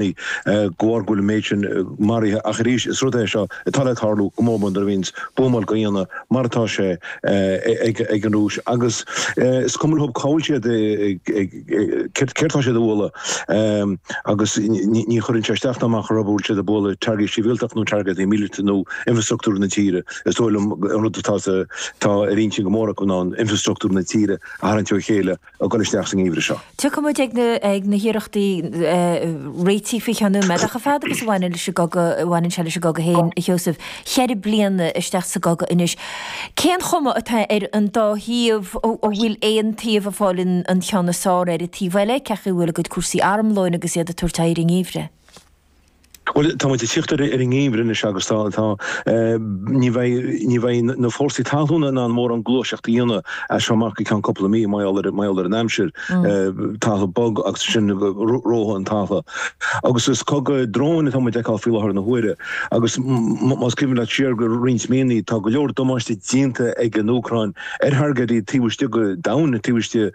Ní. gcomhair go bhfuil an méid sin maraithe ach arís is rud é seo atá le tarlú go mór mór nuair a bhíonns buamáil dhá dhéanamh mar atá sé ag an Rúis agus is cuma leo cá'il siad ag céard tá siad a bhualadh agus ní chuireann sé isteach ná amach orthu bhfuil siad ag bualadh targaidí sibhialtach nó targaidí míleata nó infrastruchtúr na tíre. Is dóigh liom an rud atá atá ar intinn go mór acu ná an infrastruchtúr na tíre a tharraingt ó chéile ag dul isteach sa ngeimhreadh seo. Tiocfaidh muid ag na hiarrachtaí réitigh faoi cheann nóiméad ach a fad agus a bhaineann leis an gcogadh, a bhaineann sé leis an gcogadh féin, a Sheosaimh. Ceithre bliana isteach sa gcogadh anois, cén chuma atá ar an dá thaobh, an bhfuil aon taobh ag fáil an ceann is fearr ar an taobh eile? Cén chaoi a bhfuil a gcuid cúrsaí armlóin agus iad ag tabhairt aghaidh ar an ngeimhreadh? Bhuel, tá muid ag tíocht ar an ngeimhreadh anois agus tá, tá, eh, ní bheidh, ní bheidh na fórsaí talúna in ann mórán gluaiseacht a dhéanamh as seo amach go ceann cúpla mí, mar gheall ar, mar gheall ar an aimsir, eh, talamh bog agus ansin reofaidh an talamh. Agus is cogadh dróin atá muid a fheiceáil faoi láthair na huaire agus más cuimhin leat siar roinnt míonna, tá go leor damáiste déanta ag an Úcráin ar thargaidí taobh istigh go domhain, taobh istigh.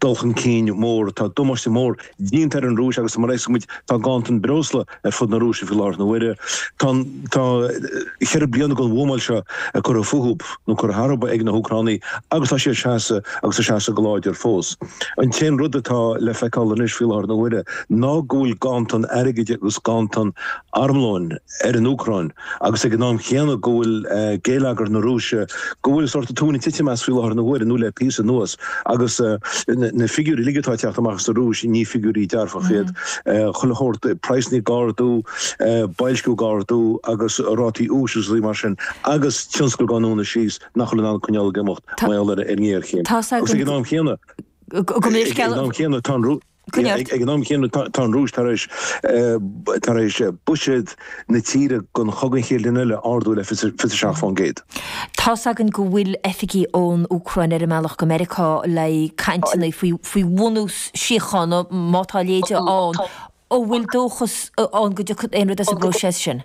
dul chun cinn mór. Tá damáiste mór déanta ar an Rúis agus mar a fheicfidh muid tá ganntan breosla ar fud na Rúise faoi láthair na huaire. Tá, tá ceithre bliana den bhuamáil seo curtha fúthu, nó curtha tharthu, ag na hÚcránaigh agus tá siad ag seasamh agus ag seasamh go láidir fós. An t-aon rud atá le feiceáil anois faoi láthair na huaire ná go bhfuil ganntan airgid agus ganntan armlóin. ar an Úcráin agus ag an am chéanna go bhfuil géilleagar na Rúise, go bhfuil sórt an tóin ag titim as faoi láthair na huaire, nó le píosa anuas, agus na figiúirí uilig atá ag teacht amach as an Rúis, ní figiúirí dearfacha iad, chuile shórt, praghsanna ag ardú, boilsciú ag ardú agus rátaí úis agus rudaí mar sin, agus tionscail dhá ndúnadh síos nach bhfuil in ann coinneáil ag imeacht mar gheall ar an ngéarchéim. Agus ag an am chéanna, ag an am chéanna tá an Rúis. Ag an am chéanna tá an Rúis tar éis buiséad na tíre don chogadh an chéad bhliain eile a ardú le 27%. Tá's againn go bhfuil oifigigh ón Úcráin ar a mbealach go Meiriceá le cainteanna faoi bhunús síochána, má tá a leithéid ann. An bhfuil dóchas ann go dtiocfaidh aon rud as an bpróiseas sin?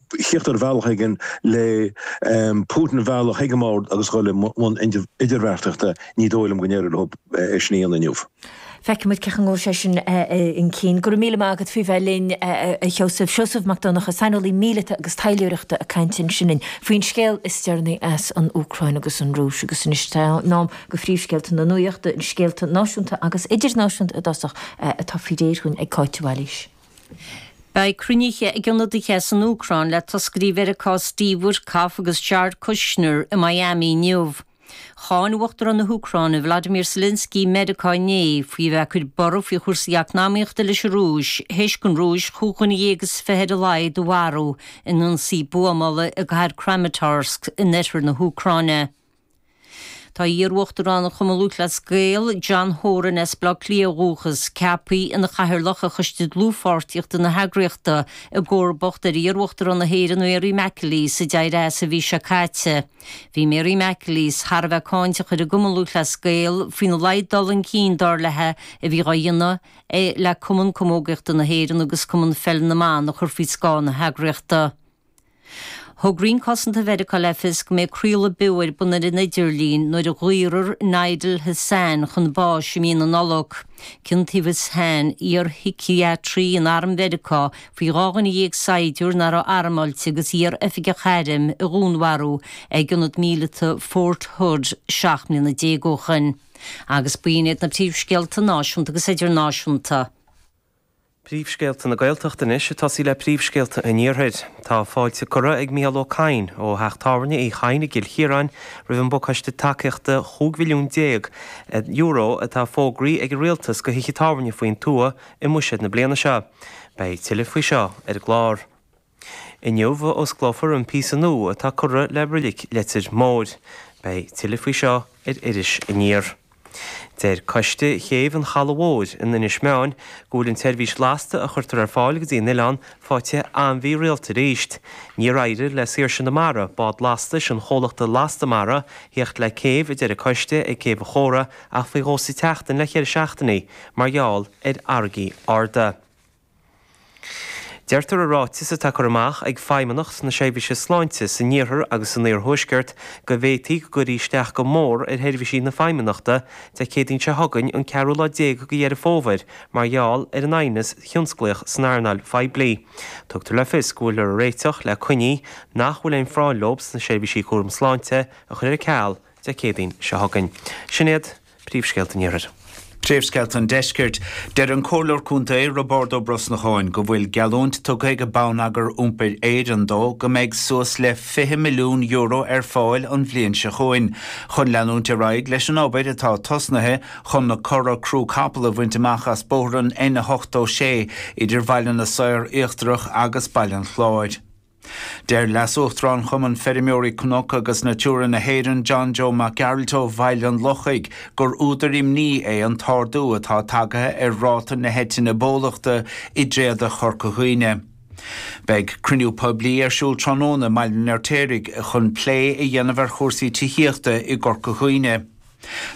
tíocht ar bhealach éigin le Putin a mhealladh chuig an mbord agus a dhul i mbun idirbheartaíochta, ní dóigh liom go n-éireoidh leo sin a dhéanamh inniu. Feicfidh muid cén chaoi a ngabhfaidh sé sin chun cinn. Go raibh míle maith agat faoi bheith linn, a Sheosaimh. Seosamh Mac Donnacha, saineolaí míleata agus taidhleoireachta ag caint ansin linn faoin scéal is deireanaí as an Úcráin agus an Rúis. Agus anois tá sé in am do phríomhscéalta na nuachta, scéalta náisiúnta agus idirnáisiúnta i dtosach, atá faoi réir againn ag Cáit de Bhailís. Beidh cruinnithe ag ionadaithe san Úcráin le toscairí Mheiriceá, Steve Witkoff agus Jared Kushner i Miami inniu. Cháin Uachtarán na hÚcráine Volodymyr Zelensky Meiriceá inné faoi a bheith ag cur borradh faoi chúrsaí eacnamaíochta leis an Rúis th'éis don Rúis chúig dhuine dhéag is fiche ar a laghad a mharú in ionsaí buamála i gcathair Kramatorsk in oirthear na hÚcráine. Tá iar-Uachtarán an Chumainn Lúthchleas Gael, John Horan as Baile Átha Cliath ó dhúchas, ceapthaí ina Chathaoirleach ar Choiste Dlúthpháirtíochta na heagraíochta, i gcomharbacht ar iar-Uachtarán na hÉireann, Mary McAleese, a d'éirigh as an mhí seo caite. Bhí Mary McAleese thar a bheith cáinteach ar an gCumann Lúthchleas Gael faoina laghad dul chun cinn, dar leithe, a bhí dhá dhéanamh le Cumann Camógaíochta na hÉireann agus Cumann Pheil na mBan a chur faoi scáth na heagraíochta. Thug Roinn Cosanta Mheiriceá le fios go mbeidh craoladh beo ar bun ar an idirlíon nuair a dhaorfar Nidal Hasan chun báis i mí na Nollag. Ciontaíodh Hasan, iar-shiciatraí in Arm Mheiriceá, faoi dhá dhuine dhéag saighdiúir nár raibh armáilte agus iar-oifigeach airm a dhúnmharú ag ionad míleata Fort Hood seacht mbliana déag ó shoin. Agus b'in iad na príomhscéalta náisiúnta agus idirnáisiúnta. Príomhscéalta na Gaeltachta anois ag tosaí le príomhscéalta an Iarthair. Tá fáilte curtha ag Micheál Ó Cadhain ó Theach Tábhairne Uí Chadhain i gCill Chiaráin roimh an bPacáiste Tacaíochta €15 mhilliún atá fógraí ag an Rialtas go thithe tábhairne faoin tuath i mBuiséad na bliana seo. Beidh tuilleadh faoi seo ar an gclár. Inniu a osclófar an píosa nua atá curtha le Roilic Leitir Móir. Beidh tuilleadh faoi seo ar Iris Aniar. Deir Coiste Chéibh an Chalaidh Mhóir in Inis Meáin go bhfuil an tseirbhís lasta a chuirtear ar fáil go dtí an oileán faighte an-mhírialta aríst. Níor éirigh le Saoirse na Mara, bád lastais an chomhlachta Lasta Mara, thíocht le céibh, a deir an coiste ag Céibh an Chóra ach faoi dhó sa tseachtain le ceithre seachtainí mar gheall ar fharraigí arda. Deirtear i ráiteas atá curtha amach ag Feidhmeannacht na Seirbhíse Sláinte san Iarthar agus san Iarthuaisceart go bhféadfadh go gcuirfí isteach go mór ar sheirbhísí na Feidhmeannachta Dé Céadaoin seo chugainn an ceathrú lá déag go Dheireadh Fómhair mar gheall ar an aighneas tionsclaíoch san earnáil phoiblí. Tugtar le fios go bhfuiltear ag réiteach le coinní nach bhfuil aon phráinn leo sna seirbhísí cúram sláinte a chur ar ceal Dé Céadaoin seo chugainn. Sin iad. príomhscéalta an Iarthair. Príomhscéalta an Deiscirt. Deir an Comhairleoir Contae, Roibeárd Ó Brosnacháin, go bhfuil geallúint tugtha ag Bonneagar Iompair Éireann dó go mbeidh suas le €20 milliún ar fáil an bhliain seo chugainn chun leanúint ar aghaidh leis an obair atá tosnaithe chun na cora crú capall a bhaint amach as bóthar an N86 idir Baile na Saor Íochtarach agus Baile an Chláir. Deir Leas-Uachtarán Chumann Feirmeoirí Cnoc agus Natura na hÉireann, John Joe Mac Gearailt ó Bhaile an Lochaigh, gur údar imní é an t-ardú atá tagtha ar ráta na heitinne bólachta i dtréada Chorca Dhuibhne. Beidh cruinniú poiblí ar siúl tráthnóna i mBaile an Fheirtéaraigh chun plé a dhéanamh ar chúrsaí tithíochta i gCorca Dhuibhne.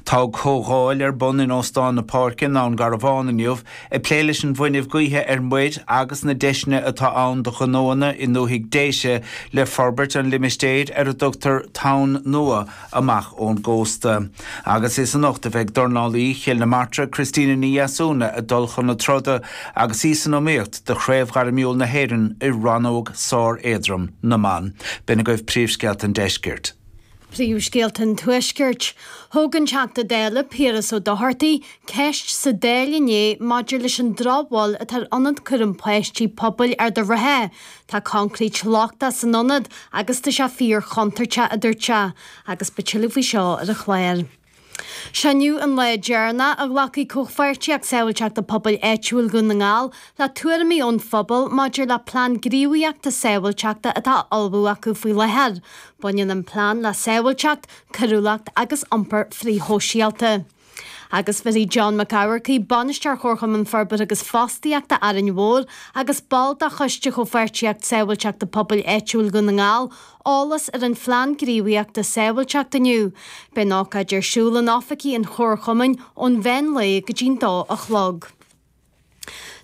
Tá comhdháil ar bun in Óstán na Páirce i nDún Garbhán inniu ag plé leis an bhfuinneamh gaoithe ar muir agus na deiseanna atá ann do ghnóanna i ndúthaigh Déise le forbairt an limistéir ar a dtugtar Tonn Nua amach ón gcósta agus is anocht a bheidh dornálaí Chill na Martra Christina Ní Dheasúna ag dul chun na troda agus í san iomaíocht do Chraobh Ghairmiúil na hÉireann i rannóg sár-éadrom na mban. B'in agaibh príomhscéalta an deiscirt. Príomhscéalta an Tuaiscirt. Thóg an Teachta Dála Piaras Ó Dochartaigh ceist sa Dáil inné maidir leis an drochbhail atá ar ionad cúram páistí pobail Ard an Rátha. Tá coincréit lochtach san ionad agus tá sé fíor-chontúirteach, a dúirt, agus beidh tuilleadh faoi seo ar an chlár. Seo é an lá deireanach a ghlacfaidh Comhpháirtíocht Sábháilteachta Pobail Áitiúil Dhún na nGall le tuairimí ón phobal maidir le plean gníomhaíochta sábháilteachta atá á ullmhú acu faoi láthair. Baineann an plean le sábháilteacht, coiriúlacht agus iompar frithshóisialta. agus bhéarfaidh John Mac Eachmharcaigh, Bainisteoir Chomharchumann Forbartha agus Fostaíochta Árainn Mhór agus ball de choiste Chomhpháirtíocht Sábháilteachta Pobail Áitiúil Dhún na nGall, eolas ar an Phlean Gníomhaíochta Sábháilteachta inniu. Beidh an ócáid ar siúl in oifigí an Chomharchumainn ón mheán lae go dtí'n dó a chlog.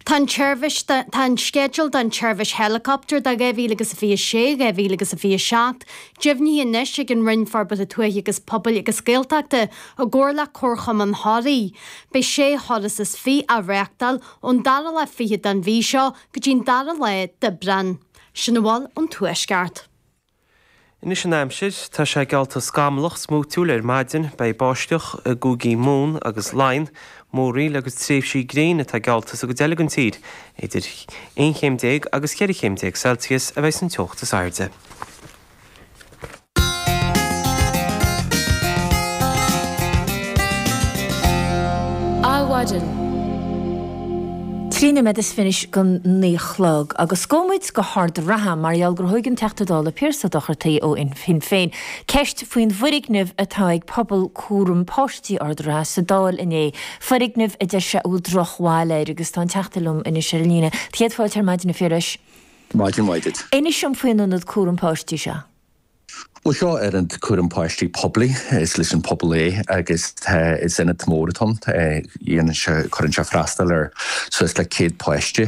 Tá an tseirbhís, tá an sceideal don tseirbhís heileacaptair do 2026, 2027 deimhnithe anois ag an Roinn Forbartha Tuaithe agus Pobail agus Gaeltachta i gcomhar le Comharchumann Thoraí. Beidh sé thuras is fiche á reáchtáil ón dara lá fichead den mhí seo go dtí'n dara lá d'Aibreán. Sin a bhfuil ón Tuaisceart. Anois an aimsir. Tá sé geallta scamallach smúitiúil ar maidin. Beidh báisteach i gCúigí Mumhan agus Laighean, múraíl agus tréimhsí gréine atá geallta sa gcuid eile den tír. Idir aon chéim déag agus cheithre chéim déag Celsius a bheidh san teocht is airde. Adhmhaidin. Trí noiméad is fiche anois go naoi a chlog. Agus gabhfaidh muid go hArd an Rátha mar gheall gur thóig an Teachta Dála Piaras Ó Dochartaigh ó Shinn Féin ceist faoin bhfoirgneamh atá ag Pobal Cúram Páistí Ard an Rátha sa Dáil inné, foirgneamh a deir sé a bhfuil drochbhail air agus tá an Teachta liom anois ar an líne. Céad fáilte ar maidin a Phiarais. Maidin mhaith duit. Inis dom faoin ionad cúram páistí seo. Bhuel, seo ionad cúram páistí poiblí. Is leis an phobal é agus tá, is ionad mór atá ann. Déanann sé, cuireann sé freastal ar suas le céad páiste.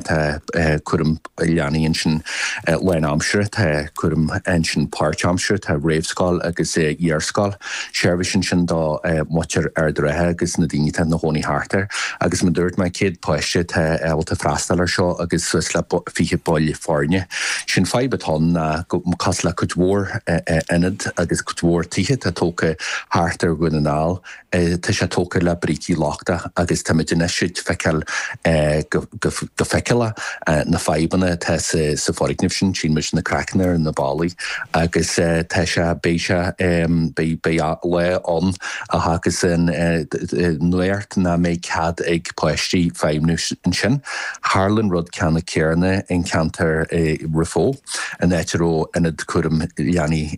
Tá cúram leanaí ansin lán aimsire, tá cúram ansin páirt aimsire, tá réamhscoil agus iar-scoil. seirbhís ansin do mhuintir Ard an Rátha agus na daoine atá ina gcónaí thart air agus mar a dúirt mé, 100 páiste atá ábalta freastal air seo agus suas le 20 baill foirne. Sé an fadhb atá ann ná go, cosúil le cuid mhór ionad agus cuid mhór tithe atá tógtha thart ar Dhún na nGall, tá sé tógtha le brící lochtacha agus táimid anois ag feiceáil go, ag feiceáil na fadhbanna atá sa foirgneamh sin, tchíonn muid na craiceanna ar na ballaí agus tá sé, beidh sé, beidh lá ann a thiocfas an uair nach mbeidh cead ag páistí feidhmniú ansin. Tharla an rud ceannann céanna in ceantar Ráth Bhoth, an áit a raibh ionad cúram leanaí.